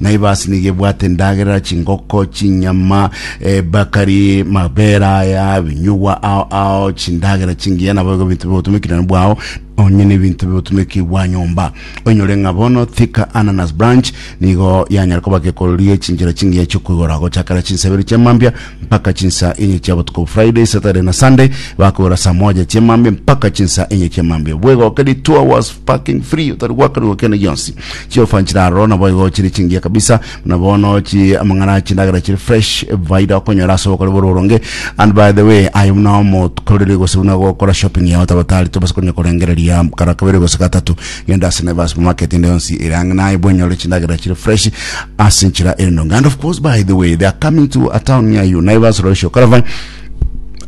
Na ebasi nigo ebwate endagera, chingoko, chinyama, ebakari, mabera aya, ebinyugwa ao ao, chindagera chingiya, nabo igo ebinto bigotumekirana bwao, onye na ebinto bigotumeki bwa nyomba. Oinyore ng'a bono Thika Ananas Branch nigo yanyare koba gekoreri gechinchera chingiya chiokoigora gochakera chinseberi chi'amambia mpaka chinsa enye chia botuko Friday, Saturday na Sunday bakogora saa moja chia emambia mpaka chinsa enye chia emambia bwegoka ri two hours parking free otari gwakanigwa kende gionsi chiofa nchira aroro nabo igo chiri chingiya kabisa na bono chi amang'ana chindagera chiri fresh vaida okonyora ase obokori bore oronge and by the way ayo buna omokoreri gose buna gokora shopping yao tabatari tobasa konya korengereria kara kabere gose gatatu genda ase Naivas supermarket ende yonsi ere ang'e naye bwenyore chindagera chire fresh ase enchera ere ndonge and of course by the way they are coming to a town near you Naivas Roisho Caravan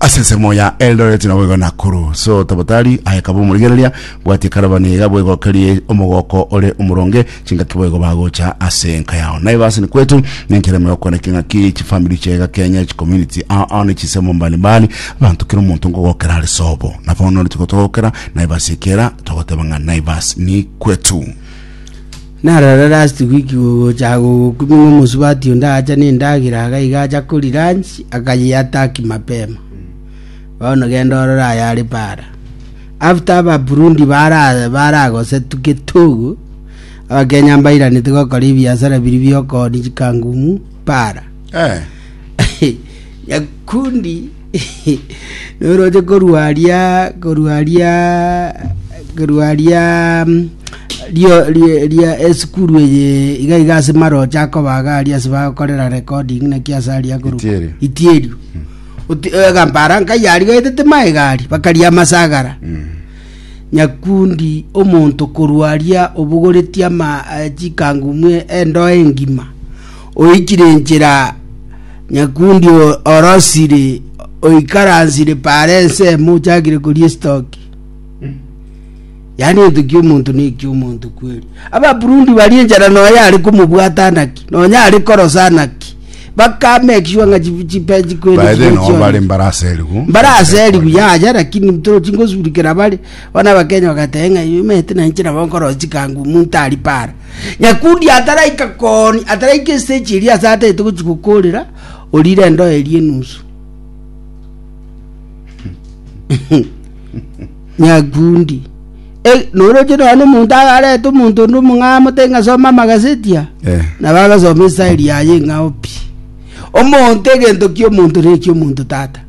ase ensemo ya Eldoret na boigo Nakuru so tabotari ayekaba omorigereria bwatie caravan iga boigo okerie omogoko ore omoronge chingaki boigo bagocha ase enka yao Naivas ni kwetu nenchera emegoko na king'aki chifamili chiaye gakenya chicommunity ao ao ne chisemo mbalimbali Abanto kera omonto nkogokera are sobo, na bono nere tigotogokera Naivas ekera togoteba ng'a Naivas ni kwetu. Naro rero ase wiki gogocha gogokumia ng'a omosubati onde agacha nendagera iga iga acha koria lunch akayeataki mapema. Bono genda orore aye are para. After aba Burundi bara baragosetu getogo abakenya mbairanete gokora ebiasara biri biokooni chikangumu para. Eh. nyakundi noroche korwa aria korwa aria korwa aria mm, rio rie- ria esukuru eye iga iga ase maroche akobaga aria ase bagokorera recording naki ase aria korwa Itieri. itierio Oti- eh, gampara nkayari gaetete maegari bakaria amasagara nyakundi omonto korwaria obogoretie ama eh, chikangu mwe endoe engima Oikire enchera, nyakundi o- orosire, oikaransire paare ensemo, ochakire koria esitoki. Yaani ento ki'omonto ne eki'omonto kweri. Ababurundi baria enchera nonya are komobwata naki, nonya are korosa naki. Bakamake sure ng'a chi- chipechi kweri baede chiria nao chionsi. bare mbarase erigu mbarase erigu yaja lakini mtoro chingosurikera bare bono abakenya bagateba ng'a imete nainche nabo nkorosi kangu omonto ari para Nyakundi ataraika kooni, ataraika esiteji eria ase ataete gochia gokoorera, orire endoe eria enusu. Nyakundi. E, noroche nonya nomonto agarete omonto onde omong'aa mote ng'asoma amagazeti a Eh. na bagasoma esari yaye ng'ao pi omonto egento kia omonto ne kia omonto tata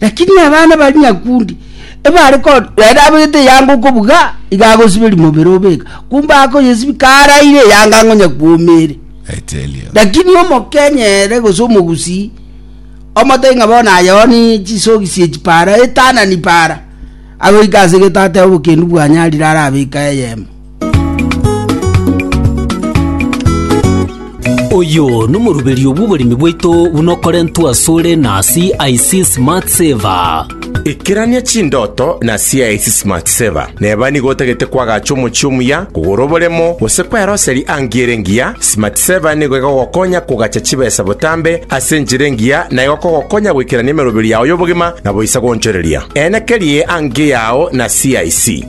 Lakini abana bari nyakundi, ebare ko rende abegete eyanga okobuga, iga agosiberia mobere obeka, kumbe akoyesibia karaire eyanga ang'o nyakuomere. I tell you. Lakini omokenyere gose omogusii omotari ng'a bono ayoni chisogi sie chipara etanani para agoika ase gete atebe obokendu bwanyarire arabeka eyemo Oyo nomoruberio bw'oboremi bwaito buna okorentwe asore na CIC Smart Saver. Ikerania chindoto na CIC Smart Saver. Neba nigo otagete kwagacha omochie omuya, kogora oboremo, gose kweroseri angi ere engiya, Smart Saver nigo egogokonya kogacha chibesa botambe ase enchera engiya na egokogokonya goikerania emeroberio yao y'obogima na boisa goonchoreria. Eena kerie ang'e yao na CIC.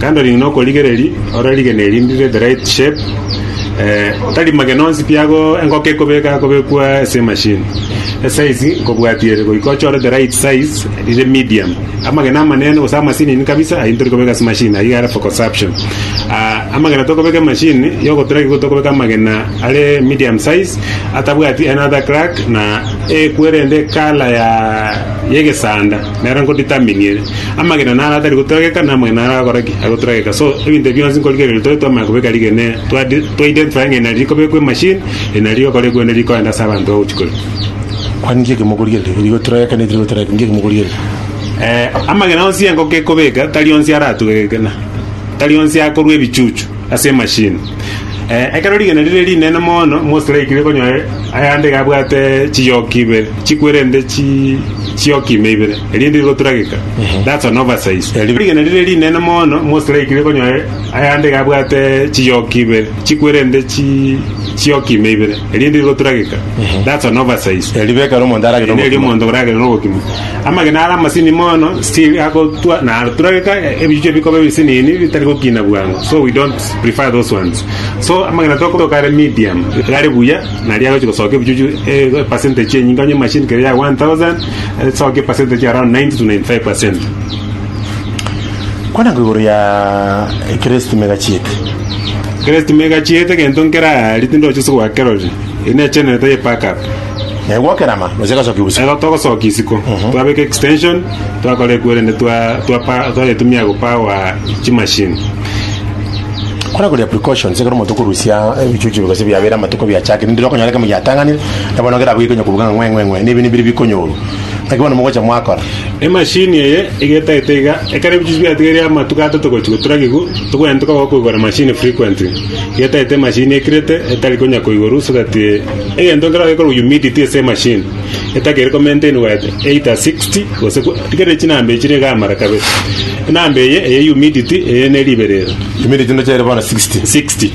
Kando ring'ina okorigereria ore rigena eri ribe the right shape tarimage nonsi pi ago engoko ekobeka yakobekwa ase emachine esize nkobwatia ere goika ochore the right size rire medium amagena amanene gose amasinini kabisa ayio nitori kobeka ase emachine ayio are for consumption amagena tokobeka emachine yogotura igo tokobeka amagena are medium size atabwati another crack na ekwerende colour ya egesanda. nere nkoritaminie amagena naro atari goturageka na amagena naro agokora ki? Agoturageka. So ebinto ebi bionsi nkorigereria riria tore twamanya kobeka rigena eri, twa twa identify ng'a eri nari rikobekwa emachine, eri nari rigokora ekwene rikoenda ase abanto agochia koria. Kwani nki eke mokorigereria? Eri goturageka na eri tari goturageka, nki eke mokorigereria? Eh, amagena onsi engoko ekobeka, tari onsi aratugegeke na tari onsi akorua ebichuchu. ase emashini. Eh, ekero rigena rire rinene mono, Mose raikire konyoa ayande iga abwate chiyoka ibere, chikwerente chi chiyoka ime ibere, erinde rigoturageka. That's an oversize. Eri- Rigena rire rinene mono, Mose raikire konyoa ayande iga abwate chiyoka ibere, chikwerente chi chiyoka ime ibere. erinde rigoturageka that's an oversize Erio bekare omonto aragere Eri eri omonto oragere nogokima amagena are amasini mono still agotwa naturageka ebichuchu ebikoba ebisinini bitari gokina bwango so we don't prefer those ones so amagena tokoroka are medium are buya naria agochi gosoka ebichuchu e percentage enyinge onye machine keria ya 1000 esoke percentage around 90 to 95 percent Kwana ng'a igoro ya Kristo timegachiete. Kristo timegachiete, egento nkeraaria tindoche ase gwakerorire. Eye ne channel taiyo pack up. Naye gwakerama gose egasokia ubusa. Ego togosokia isiko. Twabeka extension, twakora ekwerende twa twa pa twayetumia go power chi machine. Kwana koria precautions ekero omonto okorusia ebichuchu gose biabera amatuko biachakire, ndire okonyora ekemo giatang'anire, na bono kera abwo gekonyoka kobuga ng'a ng'we ng'we ng'we, na ebi nibiri bikonyorwa. Naki bono mogocha mwakora. Emashini eye egetagete iga, ekero ebichuchu biatigeire amatuko atato gochia goturagigwa, tokogenete koba gokoigora machine frequently. Egetagete emashini ekirete etari konya koigorwa so that egento nkero gekorwa humidity ase emashini etakeire ko maintain wa either 60 gose ko rigereria chinamba echi chire iga amara kabere. Enamba eye eye humidity eye ne riberera. Humidity ndoche ere bono 60. 60.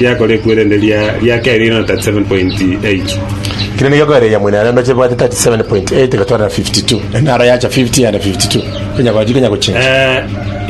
Riakore ekwe erende ria ria kere riaino 37.8. Kere nigo ekore ya mwene arembe chebwate 37.8 gotwarana 52, enaro yacha 50 and 52. Konya gochi konya gochinsa. Eh,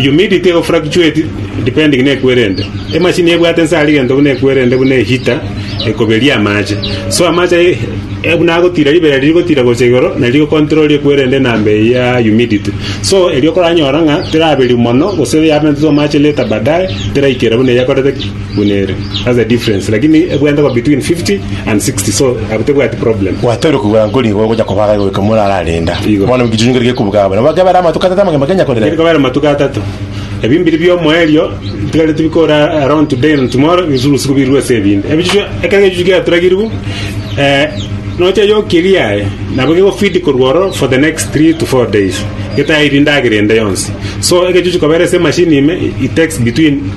humidity ego fluctuate depending na ekwe erende. Emashini ebwate nse ari gento buna ekwe erende buna ehita ekoberia amache. So amache aye eh, buna agotira ribera riri gotira gocha igoro na riri control ekwe erende enamba eye ya humidity. So erio koranyora ng'a teraberi mono gose yabentwe amache later baadaye teraikera buna eyakorete buna ere that's the difference lakini ebwente ko between 50 and 60 so abo tebwati problem Gwatoire kugora nkori igo gocha kobaga igo iko morara renda. Igo. Bono mkichunyo ngeri kekubuga bana. Baka bara matuka tata mangema Kenya kore. Ngeri kobera matuko atato ebi mbiri biomoerio ntigare tibikora around today and tomorrow bisu busiku birwe ase ebindi ebichuchu ekero ebichuchu giaturagirwu eh, nocha yokiria aye nabo gegofidi korwa oro for the next 3 to 4 days getairi ndagera ende yonsi so egechuchu kobera ase machine ime it takes between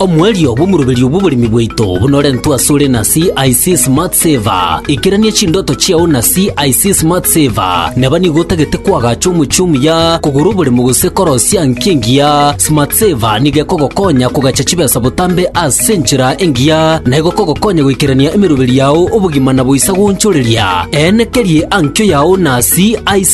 Omoerio bw'omoroberio bw'oboremi bwaito bunorentwe asore na CIC Smart Saver. Ikerania chindoto chiao na CIC Smart Saver. Neba nigo otagete koagacha omochie omuya, kogora oboremo gose korosia nki engiya, Smart Saver nigo ekogokonya kogacha chibesa botambe ase enchera engiya na egokogokonya goikerania emeroberio yao obogima na boisa goonchoreria. Eene kerie ankio yao na CIC.